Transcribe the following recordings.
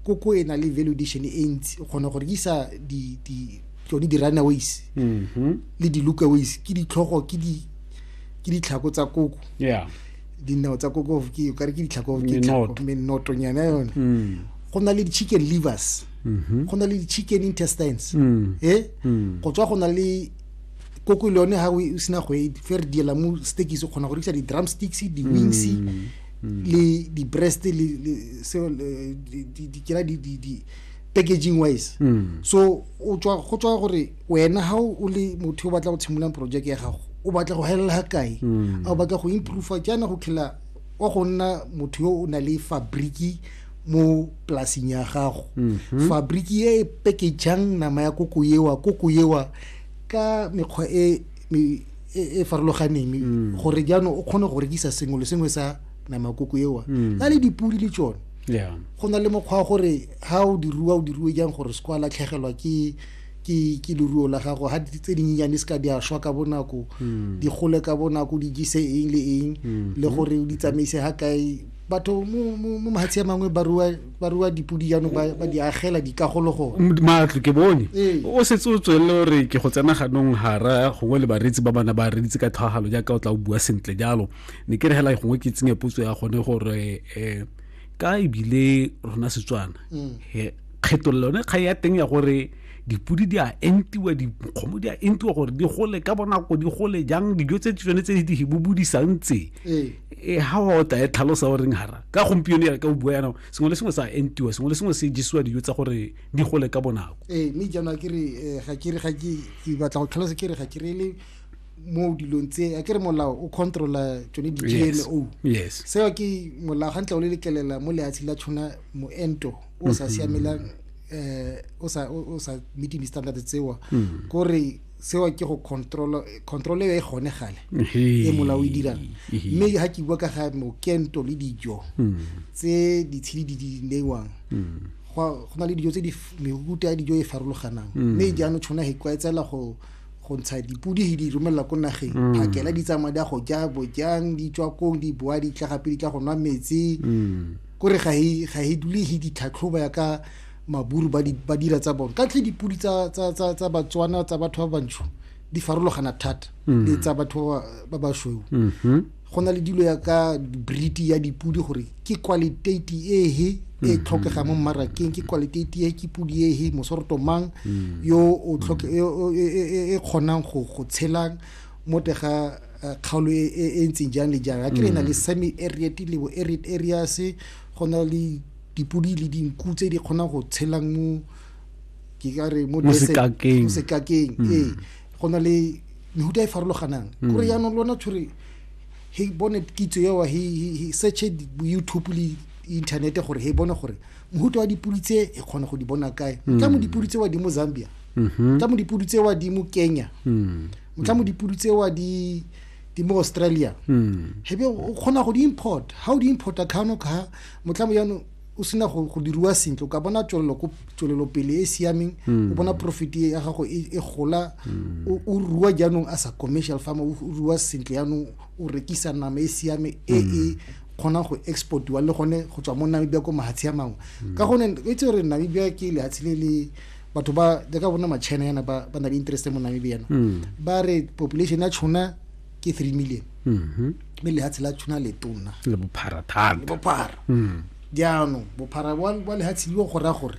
koko e na le value addition e ntsi o kgona go rekisa di di tsone di-runaways mm-hmm. le di-lookaways ke ditlhogo ke di ke ditlhako tsa koko yeah dinao tsa koko ke ka re ke ditlhako ke menotonyana yone mm. go na le di-chicken livers mm-hmm. go na le di-chicken intestines mm. e go tswa go na le koko le yone ga o sena go e fe re diela mo stekise o kgona go rekisa di-drum sticks di-wings mm. le di-breast le kera packaging wise mm. so go tswa gore wena ga o le motho o batla go tshimololang project ya gago o batla go helela ga kae mm. a o batla go improve jaana go khela wa go nna motho yo o na le fabriki mo polasing ya gago mm-hmm. fabriki e e packageng nama ya koko ewa koko ewa ka mekgwa e e, e farologaneng mm. gore jaanong o kgone go rekisa sengwe le sengwe sa namakoko ewa mm. na le dipodi le tsone go na le mokgwa wa gore ga o diruwa o diruwe jang gore se kwa latlhegelwa ke ke ke leruo la gago ha tse dinyenyane se ka di a shwa ka bonako hmm. di gole ka bonako di jise eng le eng hmm. le gore o di tsamaise ha kae batho mo mo mahatshe a mangwe ba rua ba rua dipudi jaanong ba ba di agela dikagolo go matlo ke bone Ee. o setse o tswelele gore ke go tsena ganong gara gongwe le bareetsi ba bana ba reditse ka tlhagalo jaaka o tla o bua sentle jalo ne ke re hela gongwe ke tsenye potso ya gone gore um ka ebile rona setswana he, kgethololo yone kgang ya teng ya gore dipudi di a entiwa dikgomo di a entiwa gore di gole ka bonako di gole jang dijo tse tsone tse di di bobodisang tse Ee. e ha wa o tae tlhalosa o reng hara ka gompieno ya ka o bua yana sengwe le sengwe sa entiwa sengwe le sengwe se jisiwa dijo tsa gore di gole ka bonako ee mme jaanong ke re eh, ga ke re ga ke ke batla go tlhalosa ke re ga ke re le mo dilong tse a ke re molao o controla tsone di-gmo yes seo ke molao ga ntle o le letlelela mo leatshe la tshwana moento o sa mm-hmm. siamelang um o sa meeting di-standard tsewa mm. kore seo ke go control control e gone gale e molao o e dirang mme ga ke bua ka ga mokento le dijo hmm. tse ditshedi di di neiwang hmm. go na le dijo tse di mehuta ya dijo e farologanang hmm. mme jaanong tshwana e kwaetsela go go ntsha dipodi di romelela ko nageng mm. phakela di tsamaya di a go ja bojang di tswa kong di boa di tla gape di tla go nwa metsi mm. kore ga e, e dule e ditlhatlhoba ya ka maburu ba, di, ba dira tsa bone katlhe dipodi tsa, tsa, tsa, tsa batswana tsa batho ba bantsho di farologana thata mm. le tsa batho ba basweu mm -hmm. go na le dilo ya ka briti ya dipodi gore ke qualitati ehe e mm-hmm. tlhokega mo mmarakeng ke qualitati e ke podi ehe mosoroto mang mm. yo o tlhoke e, e, e, e kgonang go go tshelang mo tega eh, kgaolo e ntseng jang le jang a ke re na le semi areat le bo arid areas go na le Dipodi le dinku tse di kgonang go tshelang mo ke ka re mo setlakeng mm. ee go na le mehuta e farologanang mm. kore yaanong lona tshore he bone kitso eo he searche youtube le inthanete gore he bone gore mohuta wa dipodi tse e kgone go di bona kae mm. tla mo dipodi tse wa di mo zambia mm-hmm. tla mo dipodi tse wa di mo kenya tla mo dipodi tse wa di di mo australia hebe o kgona go di import ga o di importa kgano ka motlhamo jaanong o sena go diriwa sentle o ka bona tswelelopele e e siameng o hmm. bona profit e ya gago e, e gola hmm. o rua jaanong as a commercial farmer o rua sentle jaanong o rekisa nama e siame e e hmm. kgona go exportiwa le gone go tswa mo namibia ko mahatshe a mangwe ka gone e tse gore namibia ke lehatshe le le batho ba jaaka bona machina yana ba na le interest mo namibia yana ba re population ya tšhona ke three million mm-hmm. mme lehatshe la tuna le tona le bophara thata le bophara mm. jaanong bophara wa lehatshe liwa go raya gore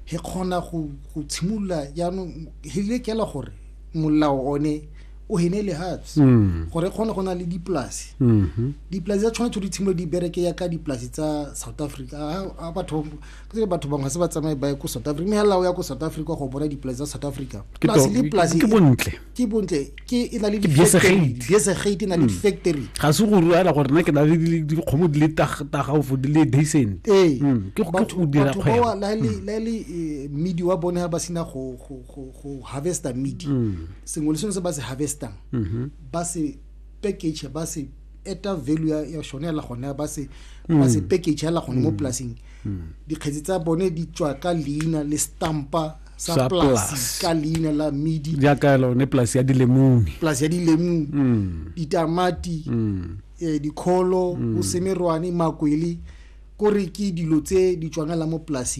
he kgona go tshimolola jaanong he lekela gore molao one o hene lehatshe mm. gore kgone go na le dipolase mm-hmm. dipolase tsa tshwanetse di tshimolo di bereke ya ka dipolase tsa south africa a batho ke batho bangwe se ba tsamaye ba ye ko south africa mme hela o ya ko south africa go bona dipolase tsa south africa polase le polase ke bontle ke bontle ke e na le dibesegate e na le hmm. factory ga se go ruela gore nna ke na le dikgomo di le tagaofo di le decent ee hmm. ke go dira kgwebo la le hmm. la le eh, midi wa bone ha ba sina go go go harvester midi sengwe le sengwe se ba se harvestang mm-hmm. ba se package ba se eta value ya ya shone la gone ba se ba se package la gone mo polasing dikgetsi tsa bone di tswa ka leina le stampa sa polasi ka leina la midi jaaka lone polasi ya dilemune polasi ya dilemune mm. ditamati mm. eh, dikgolo mm. bosemerwane makwele kore ke dilo tse di tswangela mo polasing